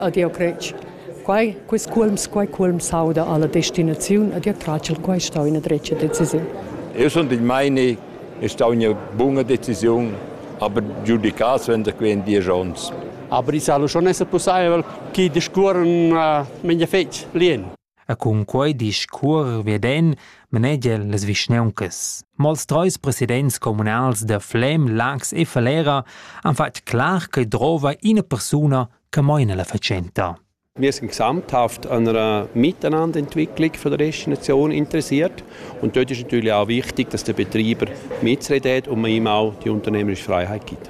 Adia crec. Quai, quis culms, quai culm sauda alla destinaziun, adia tracel, quai stau ina drecia decisiun. Eu sun del meini, è stau ina bunga decisiun, aber giudicaus wenn der quen dies ons. Aber ich sage schon, es ist possibel, che discorren uh, menia fetg lien. E cun quei discuor vieden manegian las vischnauncas. Mo ils treis presidents communals da Flem, Laax e Falera han fatg clar ch'ei drova ina persuna che meina la fatschenta. Wir sind gesamthaft an einer Miteinanderentwicklung von der Restlichen Nation interessiert. Und dort ist natürlich auch wichtig, dass der Betreiber mitreden und man ihm auch die unternehmerische Freiheit gibt.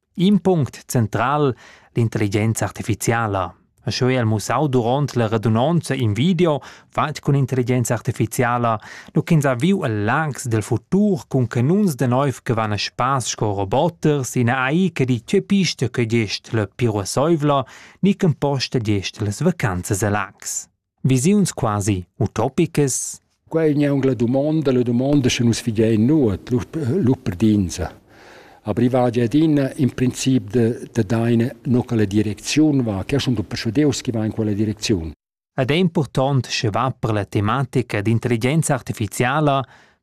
In punct central l'intelligenza artificiala. Sco el mussau duront la radunonza in video fatg cun intelligenza artificiala, nu ch'ins ha viu el langs del futur cun canuns de nov che van a spass sco roboter sin AI che di che pista che gest la piruasseivla, ni che posta gest las vacanzas a Lax. Visiuns quasi utopicas. Qua è un'angla domanda, la domanda che nus fidein nuot, l'upperdinza. Aber ich war ja din im Prinzip de, de deine no quella direcziun va, che schon du persudeus che va in quella direcziun. Ed è important che va per la tematica d'intelligenza artificiala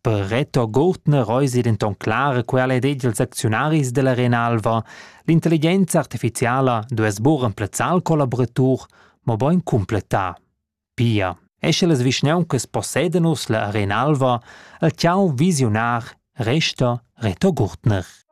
Per Reto Gurtner eisi denton clara quella ed egl secziunaris dall'Arena Alva. L'intelligenza artificiala duess buca emplazzar il collaboratur, mobein cumpletar. Pia, e sche las vischnauncas possedan uss la Arena Alva, el tgau visiunar resta Reto Gurtner.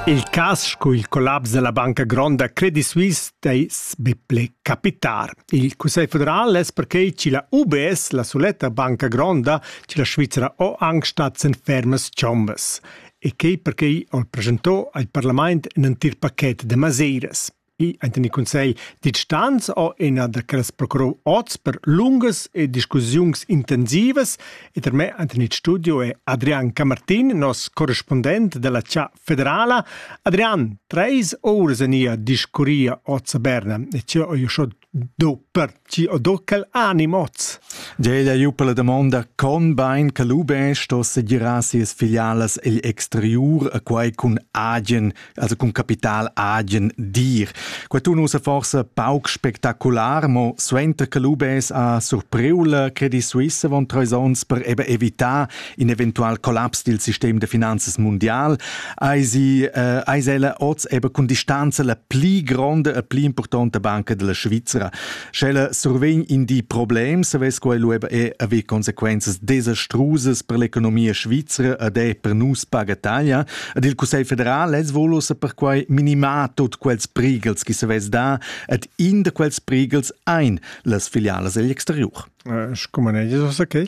Il cas sco il collaps della banca gronda Credit Suisse dais be ple capitar. Il Cussegl federal es perquei chi la UBS, la suletta banca gronda, chi la Svizzera ho anche stats en fermas chombas e che perquei ho presentò al parlament in entir paquet de maseiras. enten il consegl distanz o ina da quellas procurou oz per lungas e discussiuns intensivas e per me enten il studio è Adrian Camartin, nos correspondent della Cia Federala. Adrian, treis ores ania discuria oz a Berna e cio io schon Do pertgi o do quel anim oz? Jade ha giu per la damonda con bein che lu bein sto segirar sias filialas egl exteriur e quei cun agen, also cun capital agen dir. Quei tun ussa forsa pauc spectacular, mo suenter che lu beis ha surpriu la Credit Suisse avon treis onns per eben evitar in eventual collaps dil sistem de finanzas mundial, eisi äh, eis ella oz eben cun distanza la pli gronde e pli importante banca della Svizzera. Sch'ella survegn in di problems, vess quello eben e aver consequences desastrusas per l'economia svizzera ed è per nus paga taglia. Ed il Cussegl federal es volusse per quai minimar tut quels prigels che se vess da ed in de quels prigels ein las filiales egl exterior. Äh, Scumaneges, was okay?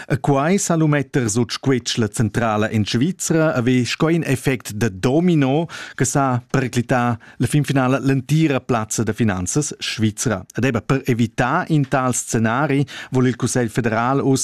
E quai sa lu metter sut squetschla centrala en Svizra ave sco in effect da domino che sa periclità la finfinala l'entira plazza da finanzas svizra. Ed eben per evitar in tals scenari vuol il Cussegl federal ussa